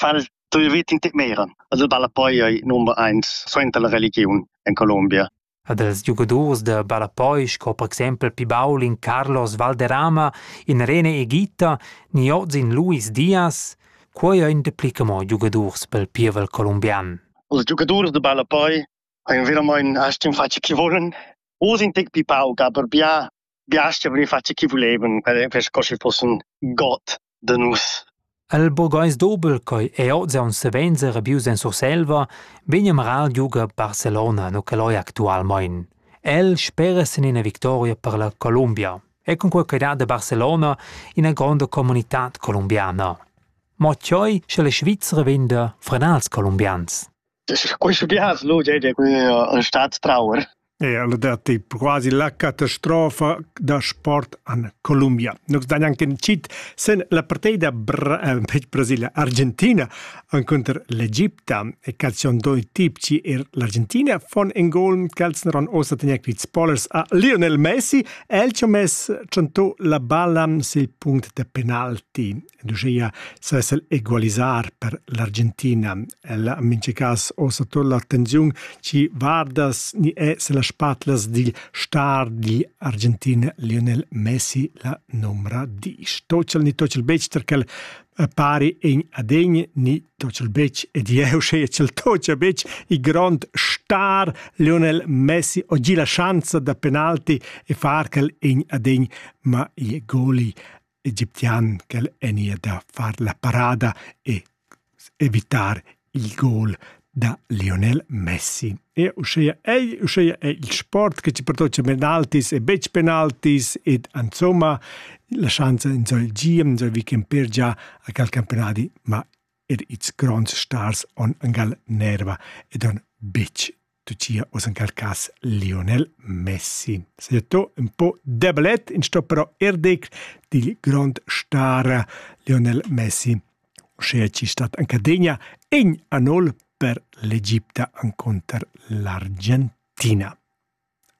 fan tui vit in tec meira. Els el ballapoi ei number eins suenter la religiun en Colombia. Ed els giugadurs da ballapoi sco per exempel Pibaulin, Carlos Valderrama, Irene Egita ni oz in Luis Diaz, quei ein dapli che mo giugadurs pel pievel colombian. Els giugadurs da ballapoi ein veramein aschi in faccia che volen. Oz in tec pipau, ga per bia biaschia vegnir fatg chi vulevan per per sco schi fussen god da nus. El burgais dobel ch'ei ei oz aunc savens rabius en Surselva, vegn a marar il giuga Barcelona no che loi actualmein. El spera sin ina victoria per la Columbia e con quei ch'ei dat a Barcelona ina gronda comunitad colombiana. Mo tgei sche la Svizra venda frenals colombians? Quist vias lu dei dir ün stat trauer. Eir el dat quasi la catastrofa da sport an Colombia. Nus dan anche in cit sen la partida bra tec Brasilia Argentina encunter l'Egipta e calcion doi tip ci er l'Argentina von in gol calzon ron osa tenia quit spoilers a Lionel Messi el ci mess chanto la balla sil punct de penalti ed uschia sess el egualisar per l'Argentina. El ha mincha cas ossa tot l'attenziun chi vardas ni è se las spatlas dil star di Argentina Lionel Messi la numra disch. Tochel ni tochel bechter quel eh, pari in adegn ni tochel bec ed jeu sche chel tocha bec i grond star Lionel Messi oggi la chance da penalti e far quel in adegn ma ie goli Egiptian ch'el vegnia da far la parada e evitar il gol da Lionel Messi. E uschia ei, uschia è il sport che ti pertocca penaltis e betg penaltis ed insomma la schanza enzoi giem, enzoi weekend per già a cal campionadi, ma er ils gronds stars on angal nerva ed on betg tucia uss en quel cas Lionel Messi. Saja to un po debelet in sto però er dec dil grond star Lionel Messi, sche ci stat anche degna en anol per l'Egipta anconter l'Argentina.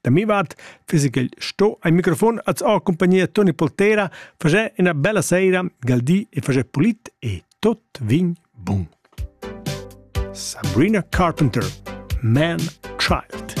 Da mi vart fiss igl sto ein microfon als ha compagnia Toni Poltera fager ina bella seira gal di e fager polit e tot vin bun. Sabrina Carpenter Man Child